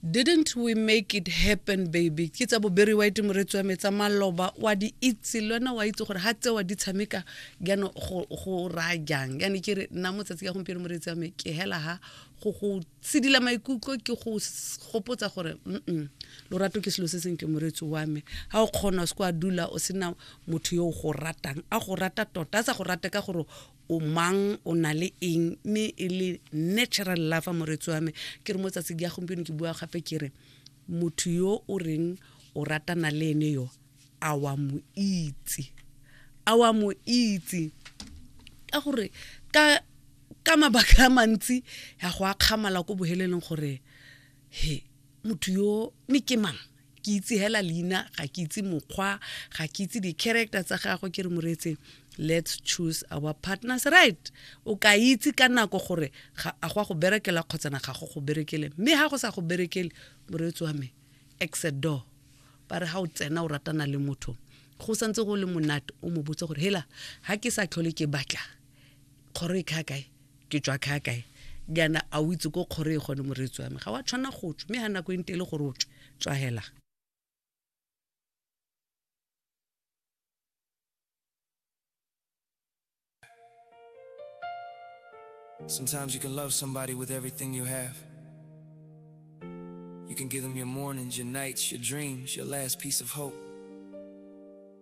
didn't we make it happen baby ke tsa boberi wa ete moretsi wa metsa maloba wa di itse le wena wa itse gore ga tsewa di tshameka jano go raya jang yane ke re nna motsatsi ka gompieno moretsi wa me ke hela ga go go tshidila maikutlo ke go gopotsa gore mm lorato ke selo se sentle moretsi wa me ga o kgona o se kwa dula o sena motho yo o go ratang a go rata tota a sa go rate ka gore o mang o na le eng mme e le natural lover moretsi wa me ke re mo tsatsi ke ya gompieno ke bua gape ke re motho yo o reng o ratana le ene yo a wa mo itse a wa mo itse ka gore ka ka mabaka a mantsi ya go akgamala ko boheleleng gore he motho yo mme ke mang ke itse hela leina ga ke itse mokgwa ga ke itse di-character tsa gagwe ke re moretse let's choose our partners right o ka itse ka nako gore a go a go berekela kgotsana ga go go berekele mme ga go sa go berekele moreetsi wa me exit door ba re ga o tsena o ratana le motho go santse go le monate o mo botse gore hela ga ke sa tlhole ke batla Kgoro e kha kae? Ke tswa kha kae? Jaana a o itse ko kgoro e gone moreetsi wa me? Ga wa tshwanna go tswa, mme ga nako e nte e le gore o tswe, tswa hela. Sometimes you can love somebody with everything you have. You can give them your mornings, your nights, your dreams, your last piece of hope.